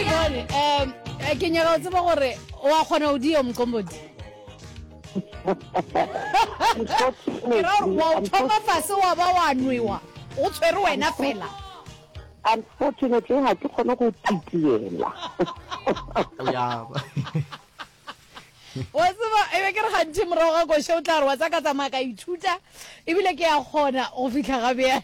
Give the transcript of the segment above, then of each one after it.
um ke nyaka o tseba gore wa kgona o dio mqombodi ke ra gore wa o thoma fase wa ba wa nwewa o tshwere wena fela unfortunately ga ke kgone go titiela wa tseba e be ke re gantši morago ga koše o tla re wa tsaka tsamaya ka ithuta ebile ke ya kgona go fitlha ga bjang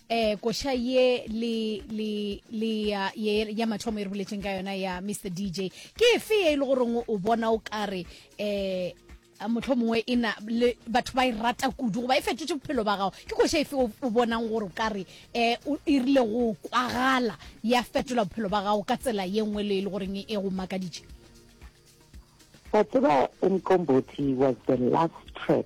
eh koša ye le le le ya ye ya mathomo e re boletseng ka yona ya Mr DJ ke efe ye e le goreng o bona o kare eh motlho mongwe e na le batho ba e rata kudu goba e fetotse bophelo ba gago ke koša efe o bonang gore o kare eh o irile go kwagala ya fetola bophelo ba gago ka tsela ye nngwe le e le goreng e go makaditše wa tseba umqombothi was the last track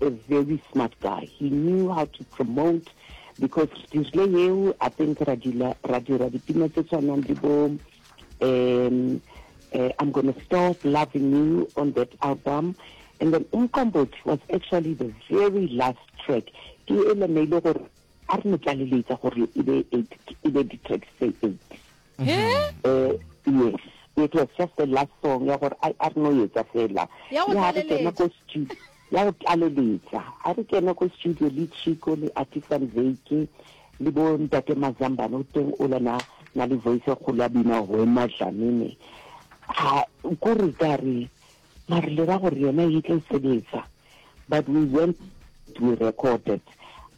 A very smart guy. He knew how to promote because re dirile yeo I think ra dila ra dira dipina tse tshwanang le bo um uh, I'm gonna stop loving you on that album and then umqombothi was actually the very last track ke ele ne ile gore A re no tlaleletša gore e be eight, e be di-tracks tse eight. He? Eh, yes. It was just the last song ya gore a a re no etsa fela. Ya go Ya re kena tlaleletša. ko studio. Ya go tlaleletša. A re kena ko studio le Chico le Artisan Veke le bo Ntate Mazambane o teng o la na na le voice e kgolo a bina Hwema Dlamini. Ha ko re ka re Ba re lera gore yona e tlo sebetsa but we went we recorded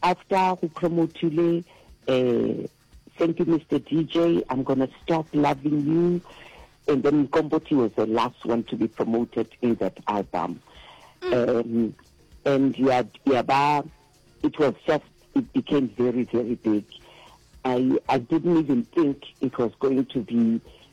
after go promothile um thank you Mister DJ I'm gonna stop loving you and then Mqombothi was the last one to be promoted in that album mm. um, and yeah, yeah, ba, it was just it became very very big I I didn't even think it was going to be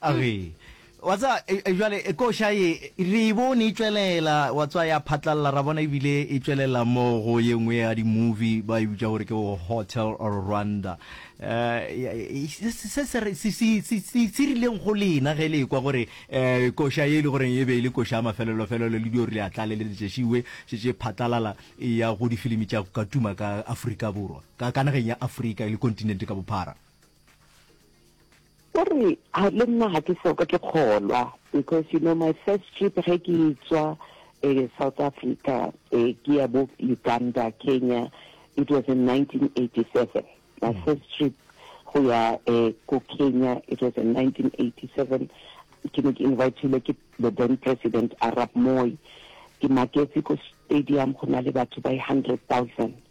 a re wa tsa e, e, jwale e, koša ye re e bone e tšwelela wa tswa ya phatlalela ra bona ebile e tšwelela mo go ye nngwe ya di-movie ba e bitša gore ke hotel rwanda um se rileng go lena ge le kwa gore um koša ye e le goreng e be e le koša ya mafelelofelelo le dio re le atlale le letšešiwe šetse phatlalala e ya go difilimi tša ka tuma ka afrika borwa ka nageng ya afrika e le kontinente ka bophara O re, Ha, le nna ga ke soka ke kgolwa, because you know my first trip ge ke etswa eh, South Africa eh, ke ya bo Uganda, Kenya, it was in 1987, my mm. first trip go ya eh, ko Kenya, it was in 1987, ke ne ke invitilwe ke the then president Arab Moi, ke maketse ko stadium go na le batho ba 100,000.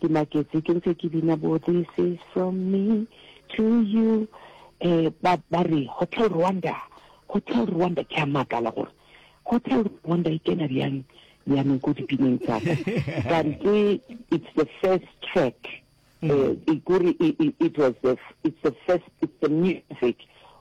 Ke maketse ke ntse ke bina bo this is from me to you eh ba ba re hotel rwanda hotel rwanda ke a makala gore hotel rwanda e kena bjang bjaneng ko dipineng tsa ka kante it's the first track eh, e kore i- i- it was the f- it's the first it's the music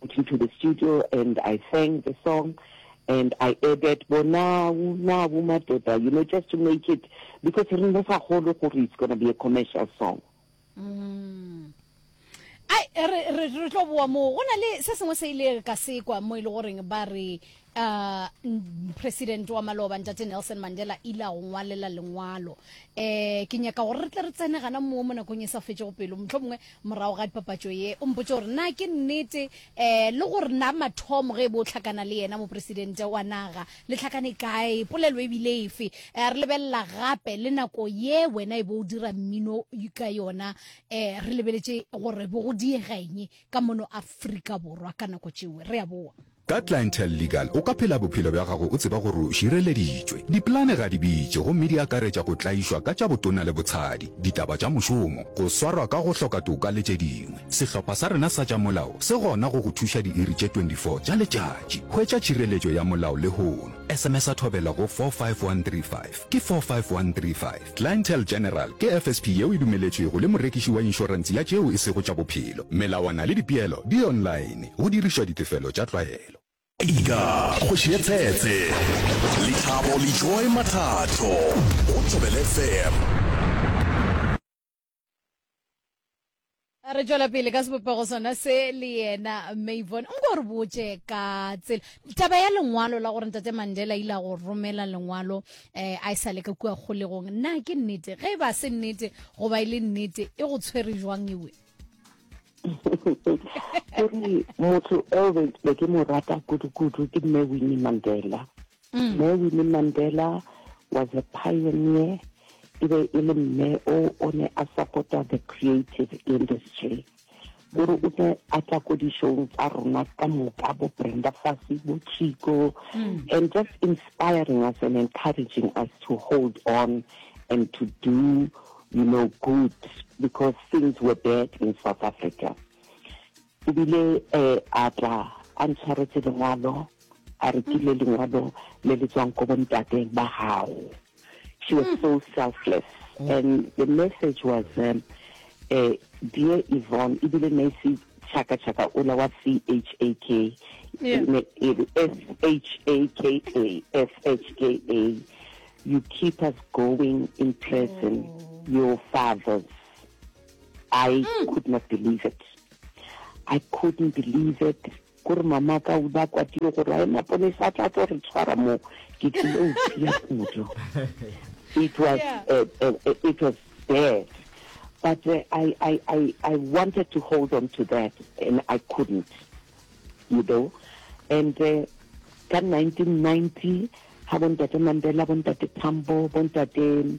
Went into the studio and I sang the song and I added bo nawu nawu madoda you know just to make it because re ne sa kgolo gore it's gonna be a commercial song mm. ai re re re tlo boa mo go na le se sengwe se ile ka sekwa mo ile e goreng ba re uh, president wa maloba ntate nelson mandela ile a go ngwalela lengwalo um ke nyaka gore re tle re tsene gana moo mo nakong e sa fetsego pelo motlho mongwe morago ga dipapatso ye o mpotse gore na ke nnete um le gore na mathomo ge e bo o tlhakana le yena mopresidente wa naga le tlhakane kae polelo ebile efe um re lebelela gape le nako ye wena e bo o dira mmino ka yona um re lebeletse gore bo go diegeng ka mono aforika borwa ka nako tšeo re a boa Ka Clientele Legal o ka phela bophelo bja gago o tseba gore o šireleditšwe. Dipolane ga di bitše gomme di akaretša go tlaišwa ka tša botona le botshadi, ditaba tša mošomo, go swarwa ka go hloka toka le tše dingwe. Sehlopha sa rena sa tša molao se gona go go thuša diiri tše 24 tša letšatši. Hwetša tšhireletšo ya molao lehono. SMS-a thobela go 45135. Ke 45135. Clientele General ke FSP yeo e dumeletšwego le morekiši wa inšorentse ya tšeo e sego tša bophelo. Melawana le dipeelo di online, go dirišwa ditefelo tša tlwaelo. Ika kgoši ye tsetse, Lethabo Lejoe Mathato go Thobelefm. a re tšwela pele ka sebopego sona se le yena mavon nko o re botse ka tsela taba ya lengwalo la gore ntate mandela ile a go romela lengwalo um a e sa le ka kua kgolegong na ke nnete ge e ba se nnete goba e le nnete e go tshwere jwang ewe kore motho eo be ke mo rata kudu-kudu ke mme winnie mandela Mme Winnie Mandela was a pioneer, e be e le mme o o ne a support-a the creative industry. O re o ne a tla ko di-showng tsa rona ka moka, bo Brenda Fassie, bo Chicco, and just inspiring us and encouraging us to hold on and to do you know good because things were bad in South Africa. O bile a tla a ntshwaretse lengwalo, a re ke le lengwalo le le tswang ko bontate ba gago. She was so selfless and the message was um, eh, Dear Yvonne, ebile ne se chaka chaka ola wa CHAK, Yeah. ne e re S-H-A-K-A, S-H-K-A, you keep us going in prison, your fathers. I mm. could not believe it. I couldn't believe it. Kore mama ka o ba kwatile gore a ena ponesa a tla tlo re tshwara mo ke tlile o tia kudu. It was yeah. uh, uh, uh, it was bad. But uh, I, I, I, I wanted to hold on to that and I couldn't. You know? And uh, ka 1990 ha bontate Mandela bontate Tambo bontate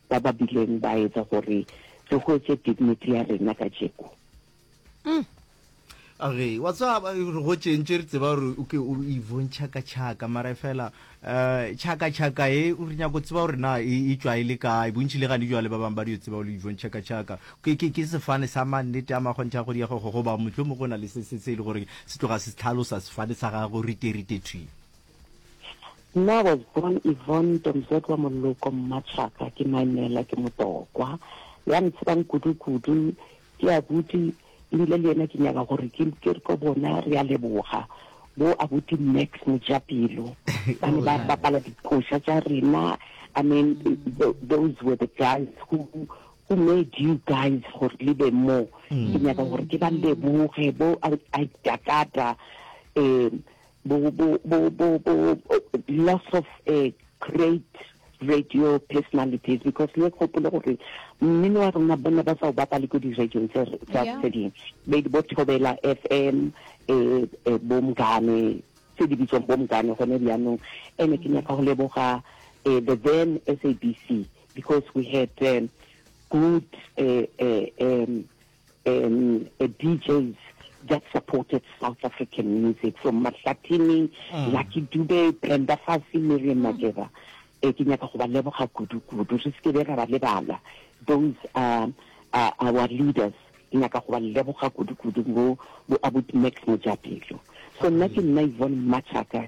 ba ba bileng ba etsa gore re hwetše dignity ya rena ka tšeko. Mm. Okay, wa tsaba re go tšentše re tseba gore o ke o ivontšha ka tšhaka mara fela um tšhaka tšhaka e o re nyako tseba gore na e, e tšwa e le kae bontšhi le gane jwale ba bangwe ba dio tseba o le ivontšha ka tšhaka ke, ke, ke sefane sa mannete a makgontšha go diego go goba motlho mo go na le se se se e le gore se tloga se tlhalosa sefane sa gage go riterite thwi Nna was born Yvonne Tomzodwa Moloko Mmatšhaka ke Maimela ke Motokwa ya ntsebang kudu kudu ke abuti ebile le yena ke nyaka gore ke ke re ko bona re a leboga bo abuti Max Mojapelo ba ne ba bapala dikoša tša rena I mean tho- those were the guys who who made you guys gore le be mo ke nyaka gore ke ba leboge bo I, I Dakata um bo, bo, bo, bo, bo, loss of a great radio personalities because le gopole gore mmino wa rona bona ba sa o bapale ko di-radiong tse tse dingwe be di bo thobela f m um bomgane tse di bitswang bomgane gone bjanong ene ke nyaka go leboga um the then s a b c because we had um, good uh, uh, um, um a DJs that supported South African music from Mahlatini, mm. Lucky Dube, Brenda Fassie, Miriam mm. Makeba. Eh, ke nyaka go ba leboga kudu-kudu re se ke be ra ba lebala those are, are our leaders ke nyaka go ba leboga kudu-kudu bo abut max mojapelo so nna ke nna ivone machaka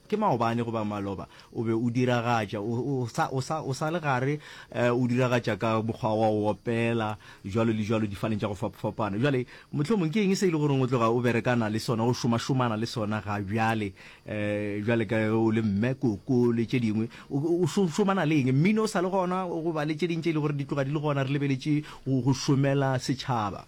Ke maobane goba maloba o be o diragatša, o, o sa, o sa, o sa le gare, uh, o diragatša ka mokgwa wa go opela, jwalo le jwalo, difaneng tša go fapafapana. Bjale, mohlomong ke eng se e le goreng o tloga o berekana le sona, o šomašomana le sona ga bjale, uh, bjale ka ge o le mme, koko, le tše dingwe? O, o šo, šomana le eng? Mmino o sa le gona, goba le tše ding tše e le gore di tloga di le gona, re lebeletše go, go šomela setšhaba?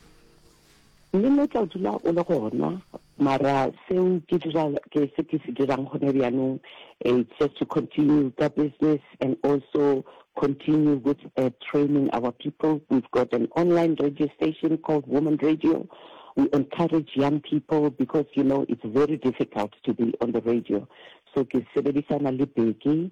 Mmino o tla dula o le gona, Mara seo ke dira, ke se ke se dirang gona bjanong, it's just to continue ka business and also continue with training our people. We've got an online radio station called Woman Radio. We encourage young people because you know it's very difficult to be on the radio. So ke sebedisana le Bheki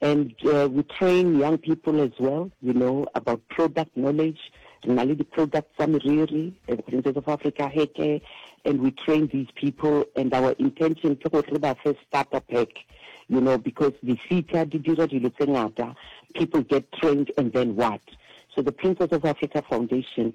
And we train young people as well, you know, about product knowledge. Re na le di-products tsa meriri, eh, the Princess of Africa hair care, and we train these people, and our intention ke gore re ba fe starter pack, you know, because the difita di dira dilo tse ngata, people get trained and then what? So the Princess of Africa Foundation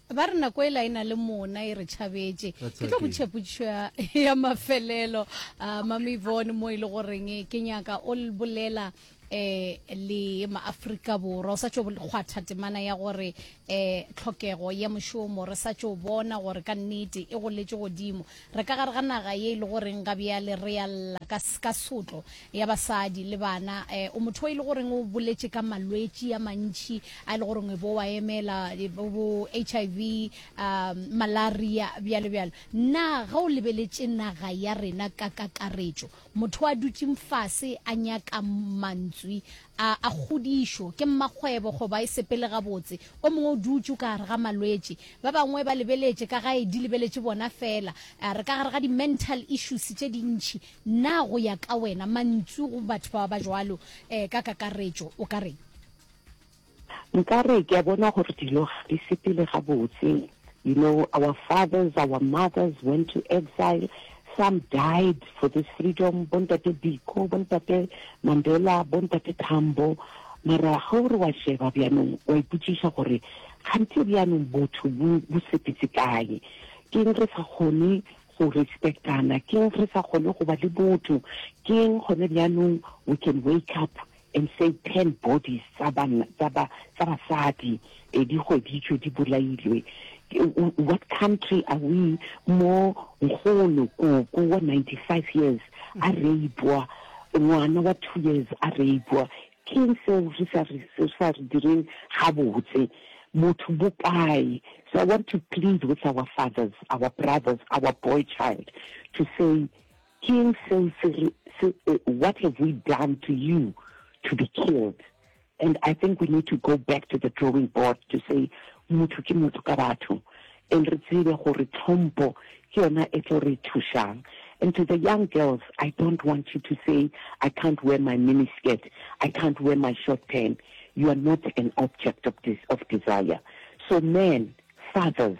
Ba re nako e la e na le mona e re tšhabetše. Ke tlo botšha potšišo ya, ya mafelelo uh, Mami Yvonne mo e le goreng ke nyaka o bolela eh le maafrika borwa o sa tšo kgwatha temana ya gore eh tlhokego ya mošomo re sa tšo bona gore ka nnete e goletše godimo Re ka gare ga naga ye e le goreng ga bjale re ya lla ka, ka sotlo ya basadi le bana. E, o motho e le goreng o boletše ka malwetši a mantši a e le goreng e bo wa emela, e, bo, bo HIV, a, malaria, bjalo bjalo. Na ge o lebeletše naga ya rena ka kakaretšo, Motho a dutšeng fase a nyaka mantswi a, a kgodišo, ke mmakgwebo goba e sepele gabotse. O mongwe o dutše o ka gare ga malwetši. Ba bangwe ba lebeletše ka gae di lebeletše bona feela. A re ka gare ga di-mental issues tše dintši. Na go ya ka wena, mantswi go batho ba ba jwalo um ka kakaretšo o ka reng? Nka re ke a bona gore dilo ga di sepele gabotse, you know, our fathers, our mothers went to exile, some died for this freedom, bo Ntate Biko, bo Ntate Mandela, bo Ntate Tambo, mara ge o re wa sheba bjanong wa ipotšiša gore kganthe bjanong botho bo bo sepetse kae, keng re sa kgone go respectana, keng re sa kgone go ba le botho, keng gone bjanong we can wake up and say ten bodies tsa banna tsa ba tsa basadi eh, di hweditšwe di bolailwe what country are we mo nkgono koko wa 95 years a reipwa ngwana wa two years a reipwa keng seo re sa re se sa re direng gabotse motho bokae so i want to plead with our fathers our brothers our boy child to say Ke eng seo se re, se, what have we done to you to be killed? And I think we need to go back to the drawing board to say, motho ke motho ka batho, and re tsebe gore tlhompho ke yona e tlo re thušang. And to the young girls, I don't want you to say, I can't wear my mini skirt, I can't wear my short pant. You are not an object of, des of desire. So men, fathers,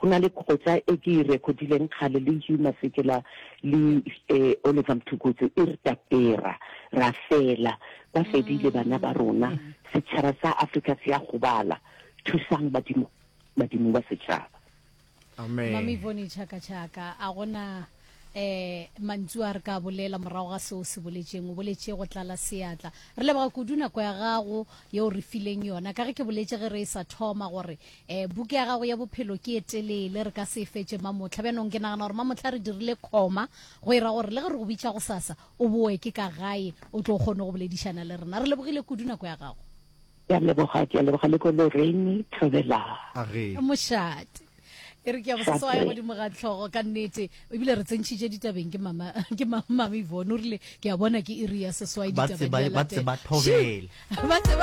Go na le kgotsa e ke e rekhodileng kgale le Hugh Masekela le Oliver Mtukudzi e re Tapera, ra fela, ba fedile bana ba rona, setšhaba sa Afrika se a gobala, thusang badimo, badimo ba setšhaba. Amen. Mami Voni Chaka Chaka, a gona um mantsu a re ka bolela morago ga seo se boletšeng o boletše go tlala seatla re leboga kudu nako ya gago yeo re fileng yona ka ge ke boletše ge re e sa thoma gore E, buka ya gago ya bophelo ke e telele, re ka se e fetše mamotlha. Bjanong ke nagana gore mamotlha re dirile khoma, go ira gore le ge re go bitša go sasa, o boe ke ka gae, o tlo kgone go boledišana le rena. Re lebogile kudu nako ya gago. Ke a leboga, ke a leboga le ko Lorraine, Thobela. Age. Mošate. E re ke ya go sasa wa ya godimo ga tlhogo ka nnete ebile re tsentšhitše ditabeng ke mama ke mama Yvonne o rile ke a bona ke iri ya seswai Ba ditabeng tseba- di a ba latela. tseba thobela. Shoo! Ba tseba